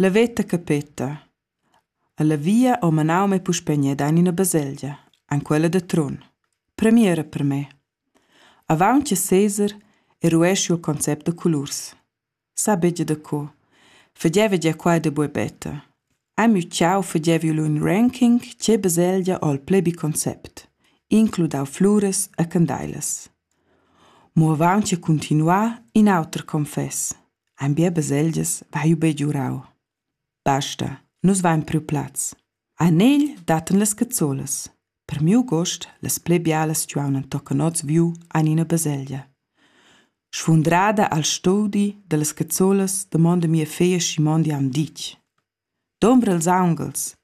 La veta capeta. Ella via ho manau mei puspei gned aint ina baselgia, en quella da Trun. Premiera per me. Avaunt che Cesar era ueschi il concept da colurs. Sa begia da co. Fageva gia quai da buebetta. Amiu Ciao fageva lu in ranking tge baselgia ho il pli bi concept, includau fluras e candailas. Mo avaunt che cuntinuar in auter confess. Ein bia baselgias vaiu begiurau. Basta, nus vein priu plaz. A negl dattan las cazzolas. Per miu gust, las pli bialas stuevan tocan oz viu ein ina baselgia. Sfundrada al studi dallas cazzolas damonda mia feglia Simondi am ditg. Dumbra ils aunghels.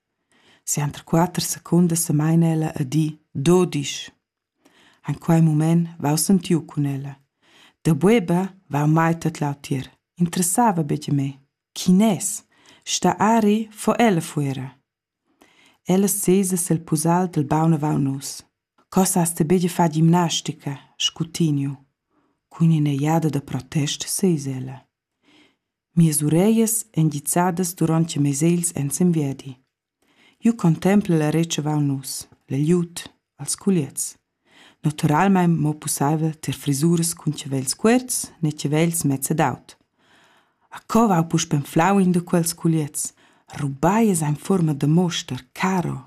Sienter quatter secundas semaina ella a di do disch. En quei mument vau sentiu cun ella. Da bueba vau mai tot lautier. Interessava betg me. Chi nes? Sta ari fo ella fuera. Ella sesa sil pusal dil baun avau nus. Cos has te betg fa gimnastica? scutigniu. Cun ina jada da protest sesa ella. Mias ureglias ein gizzadas duront che mes egls ein semviadi. Jeu contempel la retschavau nus, la glieud, els culiezs. Naturalmein mo pusseivel tier frisuras cun chavels cuorts ne chavels mezs ed aut. A co vau puspei enflau in da quels culiezs? Rubai es ein fuorma da moster, caro.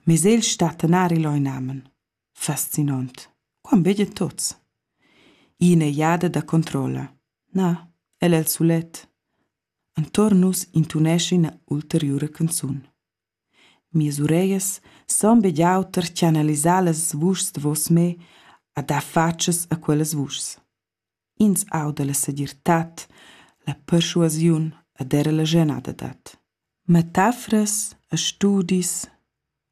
Mes egls stattan ari leu inamen. Faszinant. Quant veglia tots? Ina egliada da controlla. Na, el el sulet. Antor nus intunescha ina ulteriura canzun. Mias ureglias son begliau tar chanalisar las vuschs da vos me a dar fatschas a quellas vuschs. Ins auda la segirtad, la perschuasiun ed era la schenadadad. Metaforas e studis,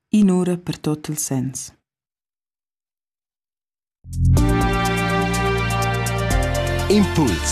in'ura per tot il sens. Impuls